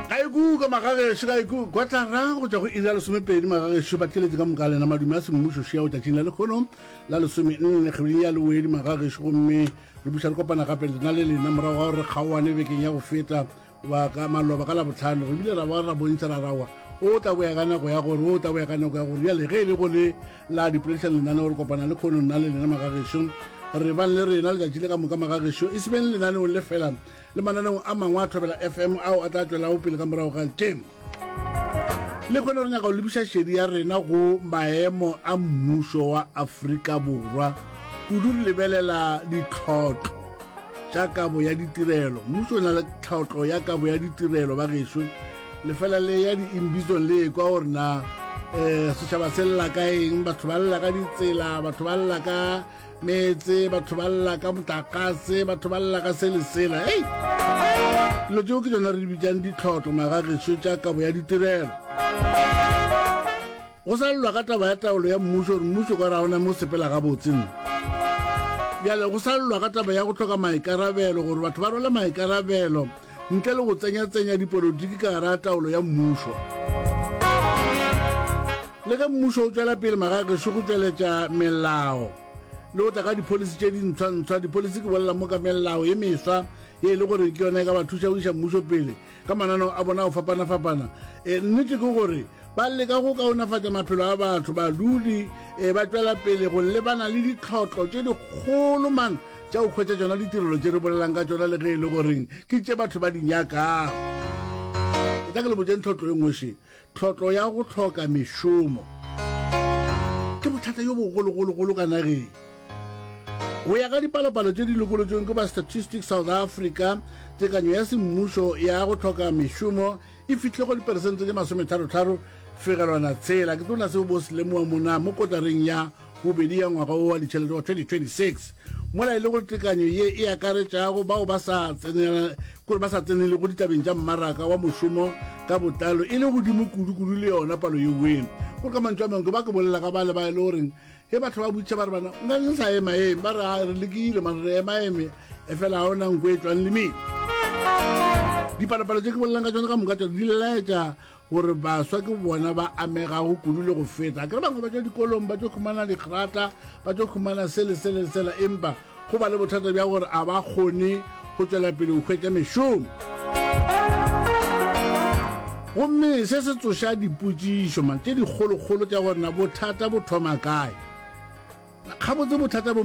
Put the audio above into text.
Gaiku ka magagešo, gaiku kotara go tšwa go iri ya lesomepedi magagešo, ba tšeletše ka moka lena madume a semmušo šeo tšatšing la lekgono la lesome nne kgweding ya lewedi magagešo gomme re buša re kopana gape lena le lena morago ga gore kgaoane bekeng ya go feta wa ka maloba ka labotlhano re bile ra ba ra bontšha ra rawa o tla boya ka nako ya gore o tla boya ka nako ya gore bjale ge e le go le la dipoledišang lenaneo re kopana le kgono nna le lena magagešo re bang le rena letšatši le ka moka magagešo e se beng lenaneong le felang le mananeo a mangwe a thobela fm ao a tla tšwelago pele ka morago ga tšemo le kgone re nyaka go lebiša šedi ya rena go maemo a mmušo wa afrika borwa kudu re lebelela ditlhotlho tša kabo ya ditirelo mmušo o na le tlhotlho ya kabo ya ditirelo ba gešo lefela le ya di-imbizon le ekwa gore na um setšhaba se lela ka eng batho ba lela ka ditsela batho ba lela ka meetse batho ba lla ka motlakase batho ba lla ka se le sela ei dilo tseo ke tsona re di bitsang ditlhotlo magageso tša kabo ya ditirelo go sa llwa ka taba ya taolo ya mmuso gore mmuso ka raona mo sepela gabotseng bjale go sa llwa ka taba ya go tlhoka maikarabelo gore batho ba rwale maikarabelo ntle le go tsenyatsenya dipolotiki ka gara taolo ya mmušo. Le ge mmušo o tšwela pele magagešo go tšweletša melao le go tla ka dipholisi tše dintshwantshwa, dipholisi ke bolela moka melao ye meswa ye e le gore ke yona e ka ba thuša go iša mmušo pele ka mananeo a bona go fapana-fapana. E, nnete ke gore ba leka go kaonafatša maphelo a batho, badudi e, ba tšwela pele go lebana le ditlhotlo tše dikgolo mang Tša go hwetša tšona ditirelo tše re bolelang ka tšona le ge e le goreng ke tše batho ba di nyakago. Ke tla ke le botšeng tlhotlo e nngweše, tlhotlo ya go hloka mešomo. Ke bothata yo bogologologolo ka nageng. Go ya ka dipalopalo tše di lokolotšweng ke ba Statistics South Africa, tekanyo ya semmušo ya go hloka mešomo e fihle go diperesente tše masometharo-tharo fegelwana tshela. Ke tlo na seo bo se lemoa mona mo kotareng ya bobedi ya ngwaga wo wa ditšhelete wa 2026 mola e le gore tekanyo ye e akaretšago bao ba sa tsenela kore ba sa tsenele go ditabeng tša mmaraka wa mošomo ka botlalo e le godimo kudu-kudu le yona palo yeweng gore ka mantšu a mangwe ke ba ke bolela ka bale ba e le goreng ge batho ba butšha ba re bana nka ke sa ema eme ba re a re lekile mare re ema eme efela ga o nang ko e tswang le mene dipalopalo tse ke bolelang ka tsone ka moka tsone di laetša gore baswa ke bona ba amegago kudu le go feta kere bangwe ba tšwa dikolong ba tšo khumana digrata ba tšo khumana se le sele sela empa go ba le bothata bja gore a ba kgone go tšwela pele go hwetša mešomo gomme se se tsoša dipotšišo man tše dikgolokgolo tša gorena bothata bo thoma kae gabotse bothata bo